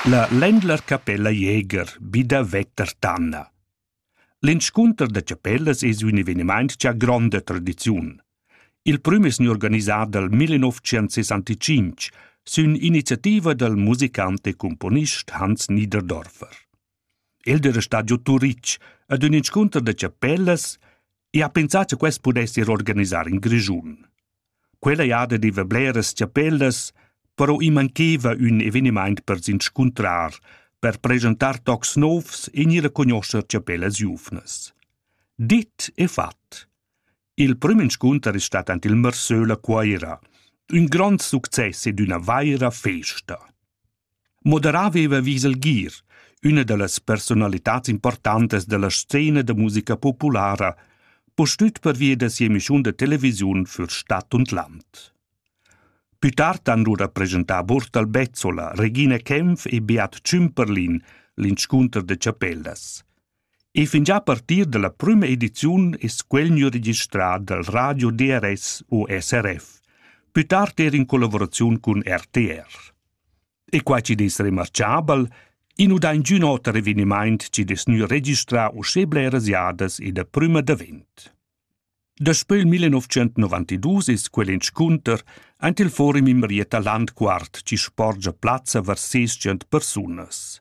La Ländlerkapella Jäger bi da Vettertanna L'inscunter da chapellas es ün evenimaint cha ha gronda tradiziun. Il prüm es gnü organisà dal 1965 sün iniziativa dal musicant e cumponist Hans Niederdorfer. El era stat giu Turitg ad ün inscunter da chapellas e ha pensà cha quest pudess ir organisar in Grischun. Quella jada deva bleras chapellas, però i mancheva ün evenimaint per s'inscuntrar, per presentar tocs novs e gnir a cognoscher chapellas giuvnas. Dit e fat. Il prüm inscunter es stat aint il Mersöl a Cuaira. Ün grond success ed üna vaira festa. Moderà veva vis el gir, üna da las personalitats importantas della scena da musica populara, postüt pervia da sia emischiun da televisiun für Stadt und Land. Più tard han lura presentà Burtal Bezzola, Regina Kempf e Beat Cümperlin l'inscunter de Chapellas. E fingià a partir da la prüma ediziun es quel gnü registrà dal radio DRS u SRF, pü tard eir in collavuraziun cun RTR. E quai chi'd es remarchabel, i nu dà ingün oter evenimaint chi'd es gnü registrà uschè bleras jadas ed a prüma davent. Daspö il 1992 es quel inscunter aint il forum in Marietta Landquart chi sporgia plazza var ses tschient persunas.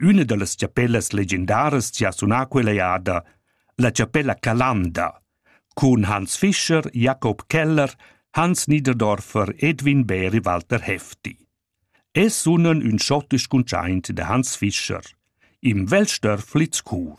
Üna da las chapellas legendaras chi ha sunà quella eada, la chapella Calanda, cun Hans Fischer, Jakob Keller, Hans Niederdorfer, Edwin Bär e Walter Hefti. Es sunan ün schottisch cuntschaint da Hans Fischer, im Weltstörflitz Chur.